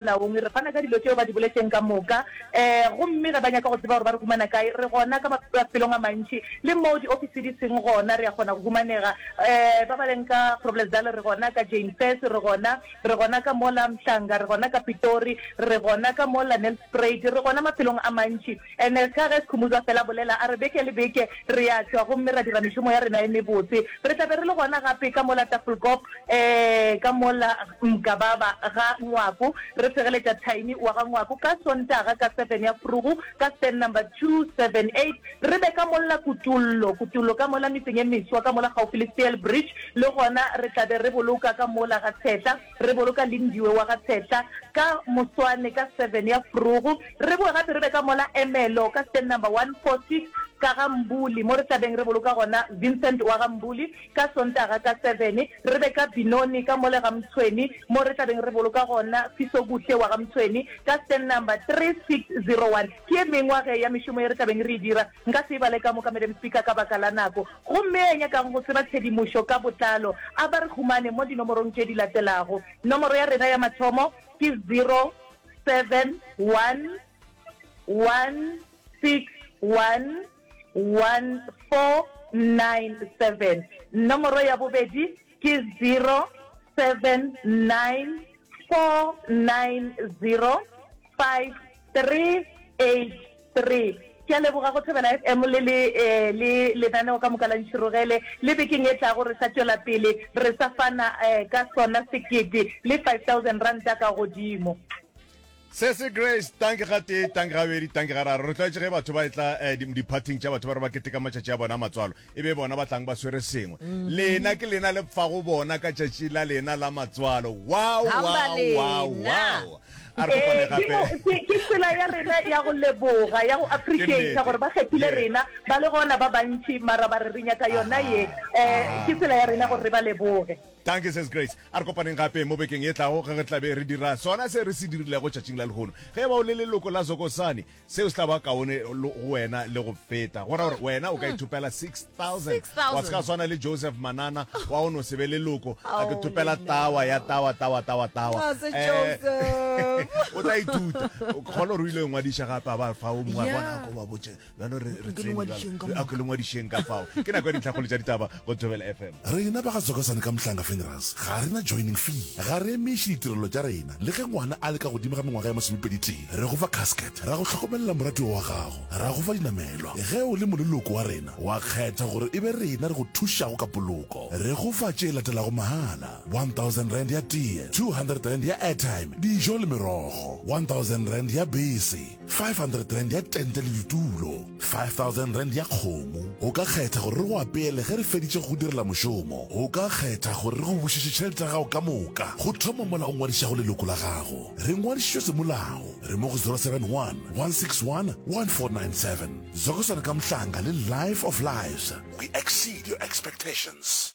Naomi, re fana ka dilo tšeo ba di boletšeng ka moka. Ee, gomme ge ba nyaka go tseba gore ba re humana kae, re gona ka mafelong a mantši. Le moo diofisi di seng gona, re a kgona go humanega. Ee, ba ba leng ka Groblersdal, re gona ka Jane Fess, re gona, re gona ka mola Mhlanga, re gona ka Pitori, re gona ka mola Nelspruit, re gona mafelong a mantši. And ka ge Skhumbudzo a fela bolela, a re beke le beke re a tšwa gomme ra dira mešomo ya rena e mebotse. Re tla be re le gona gape ka mola Tafelkop, ee, ka mola Mgababa ga Ngwaku, re segeletša Tiny wa ga Ngwaku ka Sontaga ka seven ya forogo ka stand number two seven eight. Re be ka molla Kutollo, Kutollo ka mola metseng e meswa ka mola kgaufsi le Steelbridge, le gona re tla be re boloka ka mola ga Tshehla. Re boloka Lindiwe wa ga Tshehla ka moswane ka seven ya forogo. Re boe gape re be ka mola Emelo ka stand number one four six ka ga Mbuli mo re tla beng re boloka gona Vincent wa ga Mbuli ka Sontaga ka seven. Re be ka Binoni ka mole ga Mtshweni mo re tla beng re boloka gona Fisokuhle wa ga Mtshweni ka stand number three six zero one. Ke ye mengwa ge ya mešomo ye re tla beng re e dira. Nka se e bale ka moka, Madam Speaker, ka baka la nako. Gomme ya nyakang go tseba tshedimošo ka botlalo, a ba re humane mo dinomorong tše di latelago. Nomoro ya rena ya mathomo ke zero, seven, one, one, six, one, one, four, nine, seven. Nomoro ya bobedi. Ke 0794905383. Ke a leboga go Thobela FM le le le lenaneo ka moka la Ntšhirogele le bekeng e tlago re sa tšwela pele re sa fana ka sona sekete le 5000 ranta ka godimo. Sesi Grace, tanki ga tee, tanki ga bedi, tanki ga raro. Re tlwaetše ge batho ba etla eh, di- diphathing tša batho ba re ba keteka matšatši a bona a matswalo, e be bona ba tlang ba swere sengwe. Lena ke lena le fago bona ka tšatši la lena la matswalo. Wow, Hamba wow, wow, lena. wow. A re kopane Eh, ke mo- gape. ke- ke tsela ya rena ya go leboga ya go Ke appreciata nnete. gore ba kgethile Yeah. rena ba le gona ba bantši mara ba re re nyaka yona Aha, ye um aha. ke tsela ya rena gore re ba leboge Thank you, Sis Grace. A re kopaneng gape mo bekeng e tlago ge re tla be re dira sona se re se dirilego tšatšing la lehono. Ge e ba o le leloko la Zokosani, seo se tla ba kaone go wena le go feta. Go ra gore wena o ka ithopela 6000. Wa se ka swana le Joseph Manana wa go no se be leloko, a ke thopela tawa ya tawa, tawa, tawa, tawa. O tla ithuta. Kgolo gore o ile ngwadiša gape a ba fa o mongwe a bona ko ba botše. bjalo re re Ke tsene lengwadišeng ka bjalo. Re- okay, lengwadišeng ka fao ke nako ya ditlhakgolo tša ditaba go thobela fm rena ba ga tsokosane ka mohlanga funerals ga re na joining fee ga re emiše ditirelo tša rena le ge ngwana a le ka godimo ga mengwaga ya masomepedi tee re go fa casket ra go hlokomelela moratiwa wa gago ra go fa dinamelwa ge o le moleloko wa rena wa kgetha gore e be rena re go thušago ka poloko re go fa tše latelago mahala 1000 rand ya tee 200 rand ya airtime dijo le merogo 1000 rand ya bese 500 rand ya tente le ditulo 5000 rand ya kgomo o ka kgetha gore re go apeele ge re feditše go direla mošomo o ka kgetha gore re go bušetše tšhelete ya gago ka moka go thoma mola o ngwadišago leloko la gago re ngwadišitšwe semolao re mo go 071 161 1497 zokosana ka mohlanga le life of lives we exceed your expectations